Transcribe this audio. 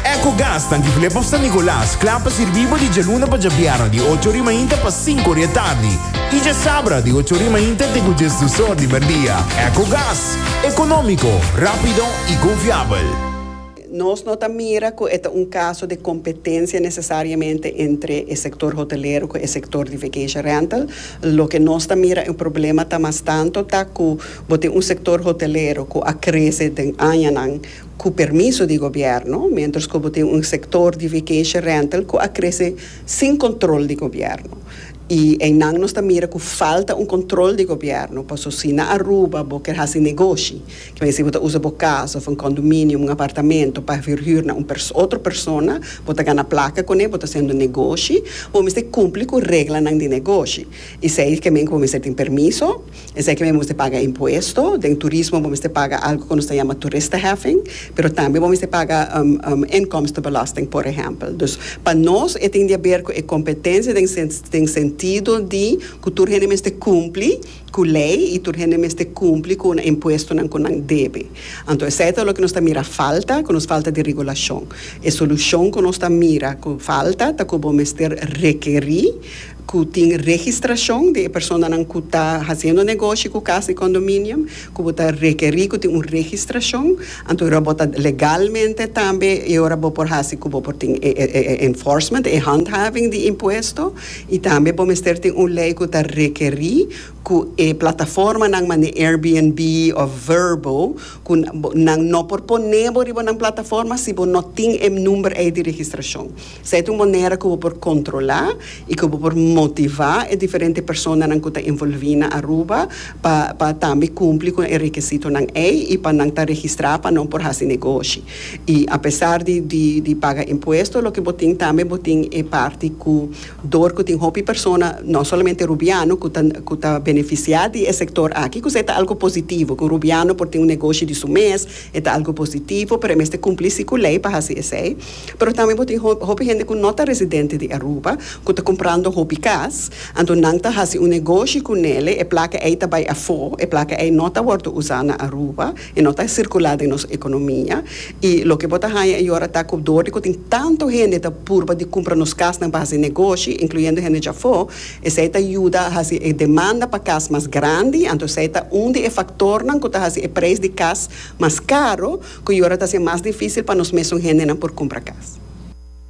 Ecogas ta Antigulé pa San Nicolas, kla pa sirbí bo di djaluna pa djabièrnè di ocho ori mainta pa sinku ori atardi i djasabra di ocho ori mainta te ku djes dusor di merdia. Ecogas, ekonómiko, rápido i konfiabel. Nos no ta mira ku e ta un kaso di kompetensia nesesariamente entre e sektor hotelero ku e sektor di vacation rental. Loke nos ta mira e problema ta mas tanto ta ku bo tin un sektor hotelero ku a krese den añanan, cu permiso di gobierno, mientras cu bo tin un sector di vacation rental cu a crece sin control di gobierno. Y eynan nos ta mira cu falta un control di gobierno, paso si na Aruba bo kier haci negoshi, kier a decí bo ta usa bo casa of un condominium, un apartamento, pa verhuur na un otro persona, bo ta gana placa con e, bo ta haciendo negoshi, bo mester cumpli cu reglanan di negoshi. Esey ke men cu bo mester tin permiso. Esaki mi mester paga impuesto. Den turismo bo mester paga algo ku nos ta yama toeristenheffing, pero tambe bo mester paga inkomstenbelasting por ehèmpel. Dus pa nos e tin di aber ku e kompetensia den den sentido di ku tur hende mester kumpli ku lei i tur hende mester kumpli ku una impuestonan ku nan debe. Anto esei ta loke nos ta mira falta, ku nos falta di regulashon. E solushon ku nos ta mira ku falta ta ku bo mester rekerí. ku tin registrashon di e personanan ku ta hasiendo negoshi ku kas di kondominio, ku bo ta rekerí ku tin un registrashon, anto e ora bo ta legalmente tambe e ora bo por hasi ku bo por tin e enforcement, e handhaving di impuesto, i tambe bo mester tin un lei ku ta rekerí ku e plataformanan manera Airbnb òf Vrbo ku nan no por pone bo riba nan plataforma si bo no tin e number ei di registrashon. Sa e ta un manera ku bo por kontrolá i ku bo por motivá e diferente personanan ku ta envolví na Aruba pa pa tambe kumpli ku e rekesitonan ei i pa nan ta registrá pa nan por hasi negoshi. I apesar di di di paga impuesto loke bo tin tambe bo tin e parti ku dor ku tin hopi persona no solamente rubiano ku ta ku ta benefisiá di e sektor aki ku se ta algu positivo ku rubiano por tin un negoshi di su mes e ta algu positivo pero e mester kumpli si ku lei pa hasi esei. Pero tambe bo tin hopi hende ku no ta residente di Aruba ku ta kumprando hopi kas, anto nan ta hasi un negoshi ku nele, e plaka ei ta bai afó, e plaka ei no ta wòrdu usá na Aruba, e no ta sirkulá den nos ekonomia, i loke bo ta haña e yora ta ku dor di ku tin tantu hende ta purba di kumpra nos kasnan pa hasi negoshi, inkluyendo hende djafó, esei ta yuda hasi e demanda pa kas mas grandi, anto esei ta un di e faktornan ku ta hasi e preis di kas mas caro, cu y ora ta haci mas dificil pa nos mesun hendenan por cumpra cas.